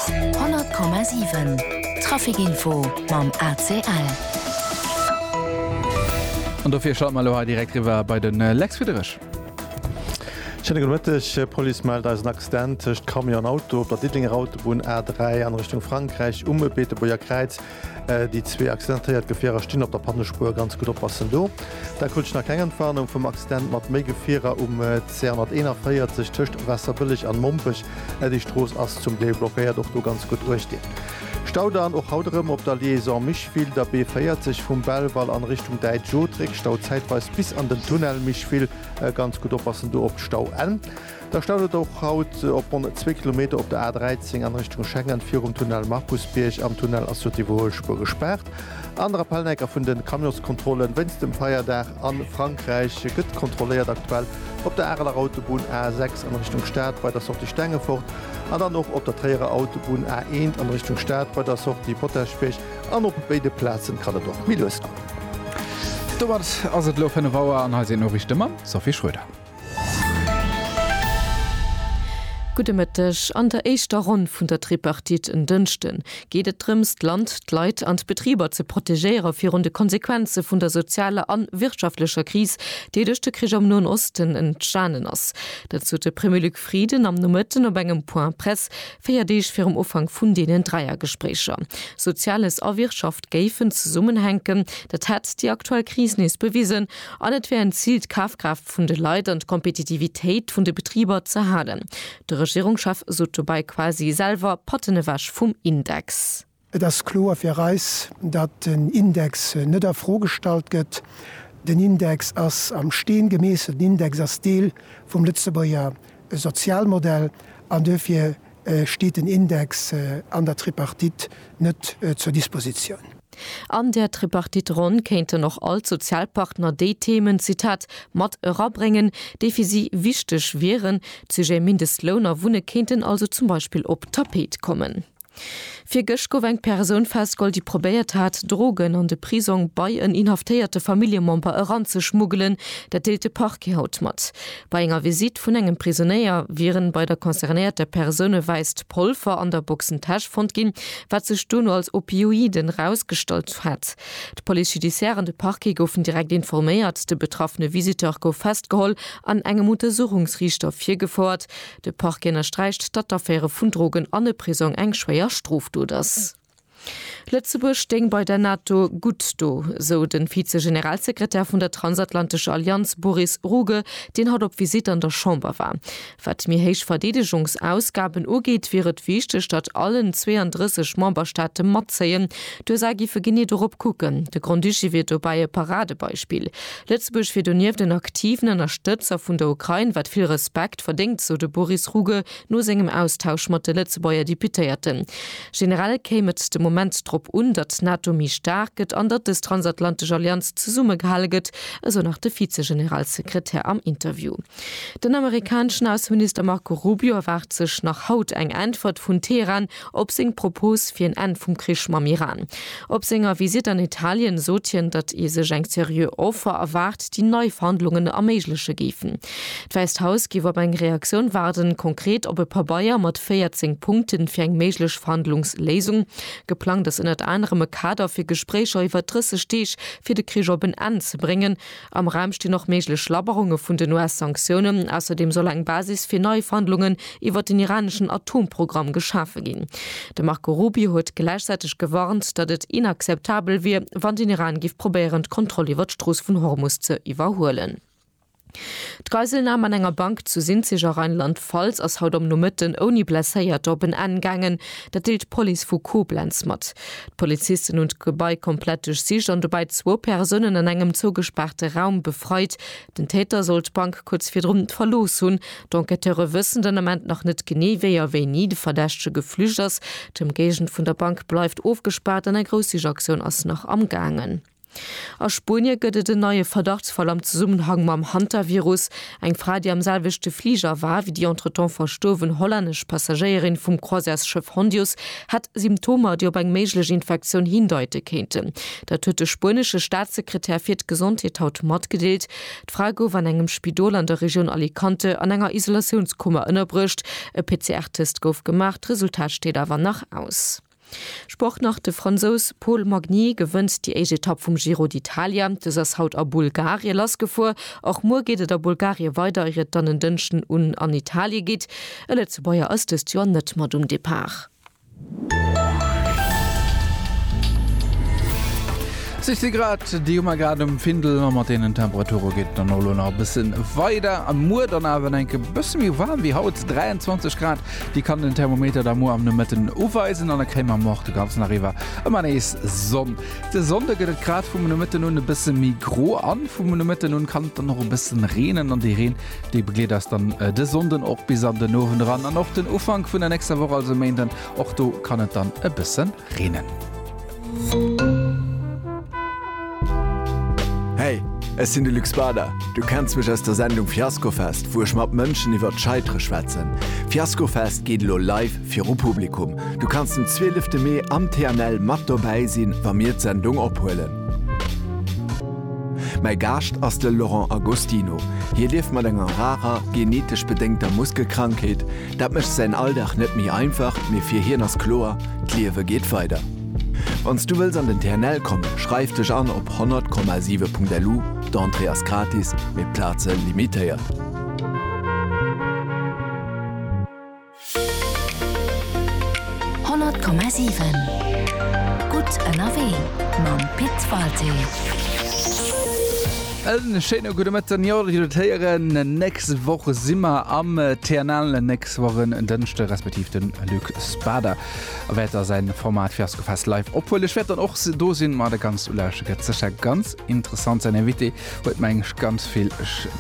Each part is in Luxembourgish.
100,7 Trafic Info mam ACL. An dofir schalte mer elo hei direkt riwwer bei de Lex Friederich. Schéine gudde Mëtteg. D'Police mellt eis en Accident tëscht Camion an Auto op der Diddelenger Autobunn A3 an Richtung Frankräich um Beetebuerger Kräiz. Déi zwee accidentéiert Gefierer stinn op der Pannespuer, ganz gutt oppassen do. Da krut ech nach keng Entwarnung vum Accident mat méi Gefierer um C141 tëscht Waasserbëlleg an Mompech. Déi Strooss ass zum Deel blockéiert, och do ganz gutt uecht dinn. Stau dann och haut erëm op der Liaison Micheville, der B40 vum Belval an Richtung Däitsch Otrek, Stau zäitweis bis an den Tunnel Micheville, ganz gutt oppassen do op d'Stauenn. Da staut et och haut op ronn zwee Kilometer op der A 13 an Richtung Schengen virum Tunnel Markusbierg. Am Tunnel ass jo d'Iwwerhuelspuer gespaart. An der Rappellnecker vun den Camionskontrollen wéinst dem Feierdag an Frankräich gëtt kontrolléiert. Aktuell op der Areler Autobunn A 6 an Richtung Stad bei der Sortie Stengefort an dann och op der Tréierer Autobunn A 1 an Richtung Stad bei der Sortie Potaschbierg. An op béide Plazen kann et och méi lues goen. Domat ass et elo 5 Auer an hei sinn d'Noriichte mam Sophie Schröder. Gudde Mëtteg. An der éischter Ronn vun der Tripartite en Dënschden geet et drëms, d'Land, d'Leit an d'Betriber ze protegéiere virun de Konsequenze vun der sozialer a wirtschaftlecher Kris, déi duerch de Krich am Noen Osten entstanen ass. Dat sot de Premier Luc Frieden am Nomëtten op engem Point Presse, véier Deeg virum Ufank vun deenen Dräiergespréicher. Soziales a Wirtschaft géifen zesummenhänken, dat hätt déi aktuell Kris nees bewisen. An et wär en Zil, d'Kafkraaft vun de Leit an d'Kompetitivitéit vun de Betriber ze halen. De Regierungschef sot dobei quasi selwer Patten ewech vum Index. Et ass kloer fir eis, datt den Index net a Fro gestallt gëtt. Den Index ass am Steen gemeesselt. Den Index ass Deel vum Lëtzebuerger Sozialmodell an duerfir steet den Index an der Tripartite net zur Dispositioun. An där Tripartite-Ronn kéinten och all d'Sozialpartner déi Themen, Zitat, mat erabréngen, déi fir si wichteg wieren. D'Sujete Mindestloun a Wunne kéinten also zum Beispill op d'Tapet kommen. Virgëscht gouf eng Persoun festgeholl, déi probéiert hat, Drogen an de Prisong bei en inhaftéierte Familljemember eranzeschmuggelen. Dat deelt de Parquet haut mat. Bei enger Visitt vun engem Prisonéier wieren bei der concernéierter Persoun e wäisst Polver an der Boxentäsch fonnt ginn, wat sech dono als Opioiden erausgestallt hätt. D'Police judiciaire an de Parquet goufen direkt informéiert. De betraffene Visiteur gouf festgeholl an engem Untersuchungsriichter virgefouert. De Parquet ënnersträicht, datt d'Affäre vun Drogen an e Prisong eng schwéier Strofdot ass. Lëtzebuerg stéing bei der NATO gutt do, sou de Vize-Generalsekretär vun der transatlantescher Allianz Boris Ruge, deen haut op Visitt an der Chamber war. Wat méi héich Verdeedegungsausgaben ugeet, wier et wichteg, datt allen 32 Memberstaate matzéien. D'USA géife genee dorop kucken. De Grand-Duché wier dobäi e Paradebeispill. Lëtzebuerg wier donieft en aktiven Ënnerstëtzer vun der Ukrain, wat vill Respekt, Respekt verdéngt, sou de Boris Ruge no sengem Austausch mat de Lëtzebuerger Deputéierten. Generell kéim et de Moment drop un, datt d'NATO méi staark gëtt an datt dës transatlantesch Allianz zesummegehale gëtt, esou nach de Vize-Generalsekretär am Interview. Den amerikaneschen Ausseminister Marco Rubio erwaart sech nach haut eng Äntwert vun Teheran Op seng Propos fir en Enn vum Krich mam Iran. Op senger Visitt an Italien sot hien, datt ee sech eng seriö Offer erwaart, déi nei Verhandlungen erméigleche géifen. D'Wäisst Haus géif op eng Reaktioun waarden, konkret op e Pabeier mat 14 Punkten fir eng méiglech Verhandlungsléisung. Geplangt ass ënnert anerem e Kader fir Gespréicher iwwer 30 Deeg, fir de Krich op en Enn ze bréngen. Am Raum stinn och méiglech Labberunge vun den US-Sanktiounen. Ausserdeem soll eng Basis fir nei Verhandlungen iwwert den iraneschen Atomprogramm geschafe ginn. De Marco Rubio huet gläichzäiteg gewarnt, datt et inakzeptabel wier, wann den Iran géif probéieren, d'Kontroll iwwert d'Strooss vun Hormus ze iwwerhuelen. D'Geiselnam an enger Bank zu Sinzig a Rheinland-Pfalz ass haut am Nomëtten ouni Blesséierte op en Enn gaangen. Dat deelt d'Police vu Koblenz mat. D'Polizisten hunn d'Gebai komplett duerchsicht an dobäi zwou Persounen an engem zougespaarte Raum befreit. Den Täter soll d'Bank kuerz virdrun verlooss hunn. D'Enquêteure wëssen den Ament nach net genee, wéi a wéini de Verdächtege geflücht ass. D'Ëmgéigend vun der Bank bleift ofgespaart an eng grouss Sichaktioun ass nach amgaangen. A Spuenie gëtt et en neie Verdachtsfall am Zesummenhang mam Hantavirus. Eng Fra, déi am selwechte Fliger war wéi déi entretemps verstuerwen hollännesch Passagéierin vum Croisièresschëff Hondius, hätt Symptomer, déi op eng méiglech Infektioun hindeite kéinten. Dat huet de spuenesche Staatssekretär fir d'Gesondheet haut matgedeelt. D'Fra gouf an engem Spidol an der Regioun Alicante an enger Isolatiounskummer ënnerbruecht. E PCR-Test gouf gemaach, d'Resultat steet awer nach aus. Sport nach, De Fransous Paul Magny gewënnt déi éischt Etapp vum Giro d'Italia. Dës ass haut a Bulgarie lassgefuer. Och muer geet et a Bulgarie weider, ier et dann en Dënschden un an Italie geet. E Lëtzebuerger ass dëst Joer net mat um Depart. Sech si grad, déi hu mer grad um Findel. A mat deenen Temperature geet et dann och elo nach e bësse weider. Muer dann awer en enke bësse méi waarm wéi haut, 23 Grad. Dir kann den Thermometer da muer am Nomëtten uweisen an da kréie mer moch de ganzen Dag iwwer ëmmer nees Sonn. De Sonnde gëtt et grad vum Nomëtten un e bësse méi gro a vum Nomëtten un kann et dann och e bësse reenen an dee Reen, dee begleet eis dann de Sonnden och bis an den Owend eran an och den Ufank vun der nächster Woch, also Méinden. Och do kann et dann e bësse reenen. Hey, ech sinn de Luc Spader. Du kenns mech aus der Sendung Fiaskofest, wou ech mat Mënschen iwwer d'Scheitere schwätzen. Fiaskofest geet elo live viru Publikum. Du kanns den 12 Mee am TNL mat dobäi sinn, wa mir d'Sendung ophuelen. Mäi Gaascht ass de Laurent Agostino. Hie lieft mat enger rarer, genetesch bedéngter Muskelkrankheet. Dat mécht säin Alldag net méi einfach, mee fir hien ass kloer, D'Liewe geet weider. Wann s du wëlls an den TNL kommen, schreif dech an op 100,7.lu, d'Entrée ass gratis, mee d'Plaze limitéiert. En schéine gudde Mëtten. Jo, Dir hutt et héieren, nächst Woch si mer am TNL. Nächst Woch en Dënschde respektiv den Luc Spader wäert da säin Format Fiaskofest live ophuelen. Ech wäert dann och do sinn, mer da ganz u lauschteren. Gëtt sécher ganz interessant. Säin Invité huet meng ech ganz vill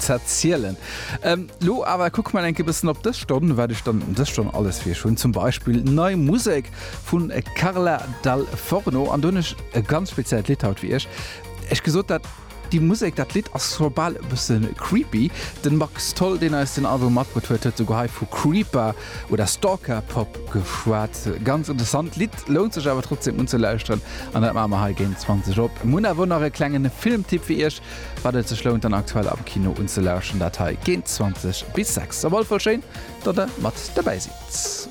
z'erzielen. Elo awer kucke mer enk e bëssen op dës Stonn, wat ech dann dës Stonn alles fir iech hunn. Zum Beispill nei Musek vu Carla Dal Forno an dunn ech e ganz speziellt Lidd haut fir iech. Ech gesot dat. Déi Musek, dat Lidd ass scho bal e bësse creepy. De Max Tholl, deen eis den Album matbruet huet, huet souguer hei vu Creeper oder Stalker Pop geschwat. Ganz interessant Lidd, lount sech awer trotzdeem unzelauschteren an dat maache mer hei géint 20 op. Mir hunn awer och nach e klengen Filmtipp fir iech, wat et sech lount dann aktuell am Kino unzelauschteren, dat hei géint 20 bis 6. Op alle Fall schéin, datt der mat dobäi sidd.